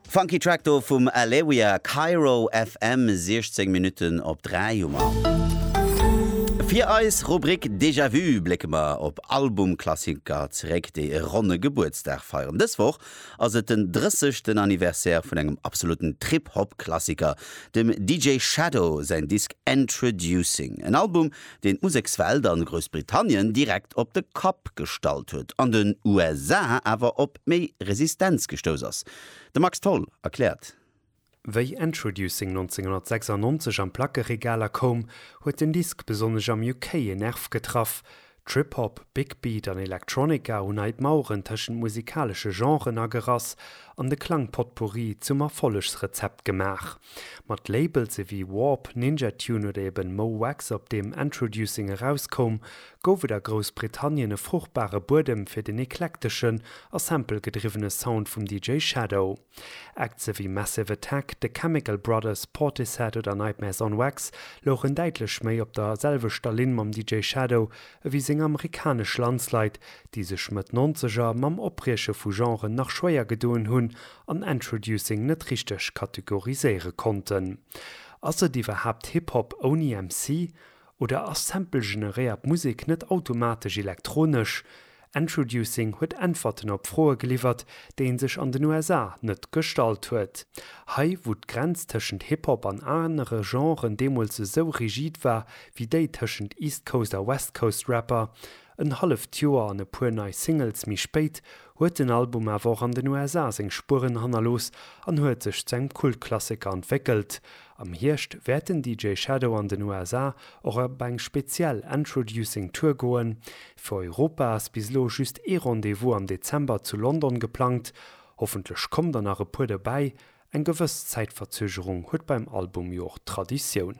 Funky Track do vum Alewia, Cairo FM, 16 Minutten op 3 hu mer. Fir eis Rubrik Déjà Vu blécke mer op Albumklassiker zeréck, déi e ronne Gebuertsdag feieren. Dës Woch ass et den 30. Anniversaire vun engem absoluten Trip-Hop-Klassiker, dem DJ Shadow säin Disk Endtroducing. En Album, deen d'Musekswelt a Groussbritannien direkt op de Kapp gestallt huet, an den USA awer op méi Resistenz gestouss ass. De Max Tholl erkläert. Wéi Endtroducing 1996 an d'Plackeregaler koum, huet den Disk besonnesch am UK en Nerv getraff. Trip-Hop, Big Beat an Electronica hunn hei d'Maueren tëschent musikalesche Genren agerass an de Klang-Potpourri zum Erfollegsrezept gemaach. Mat Labelse wéi Warp, Ninja Tune oder eben Mo Wax op deem Endtroducing erauskoum, gouf et a Groussbritannien e fruchtbare Buedem fir den eklekteschen a sample-gedriwwene Sound vum DJ Shadow. Acts ewéi Massive Attack, The Chemical Brothers, Portishead oder Nightmares on Wax louchen däitlech méi op der selwechter Linn mam DJ Shadow ewéi seng amerikanesch Landsleit, déi sech Mëtt Nonzeger mam Oprieche vu Genren nach schwéier gedoen hunn an Endtroducing net richteg kategoriséiere konnten. Ass et iwwerhaapt Hip Hop ouni MC? Oder ass Sample-generéiert Musek net automatesch elektronesch? Endtroducing huet Äntwerten op Froe geliwwert, déi ee sech an den USA net gestallt huet. Hei, wou d'Grenz tëschent Hip Hop an anere Genren deemools esou rigid war wéi déi tëschent East Coast a West Coast Rapper, en halleft Joer an e puer nei Singles méi spéit, huet den Album awer och an den USA seng Spueren hannerlooss an huet sech zu engem Kultklassiker entwéckelt. Am Hierscht wäert den DJ Shadow an den USA och op eng speziell Entroducing Tour goen. Fir Europa ass bis elo just ee Rendez-vous am Dezember zu London geplangt. Hoffentlech kommen der nach e puer dobäi, eng gewëss Zäitverzögerung huet beim Album jo och Traditioun.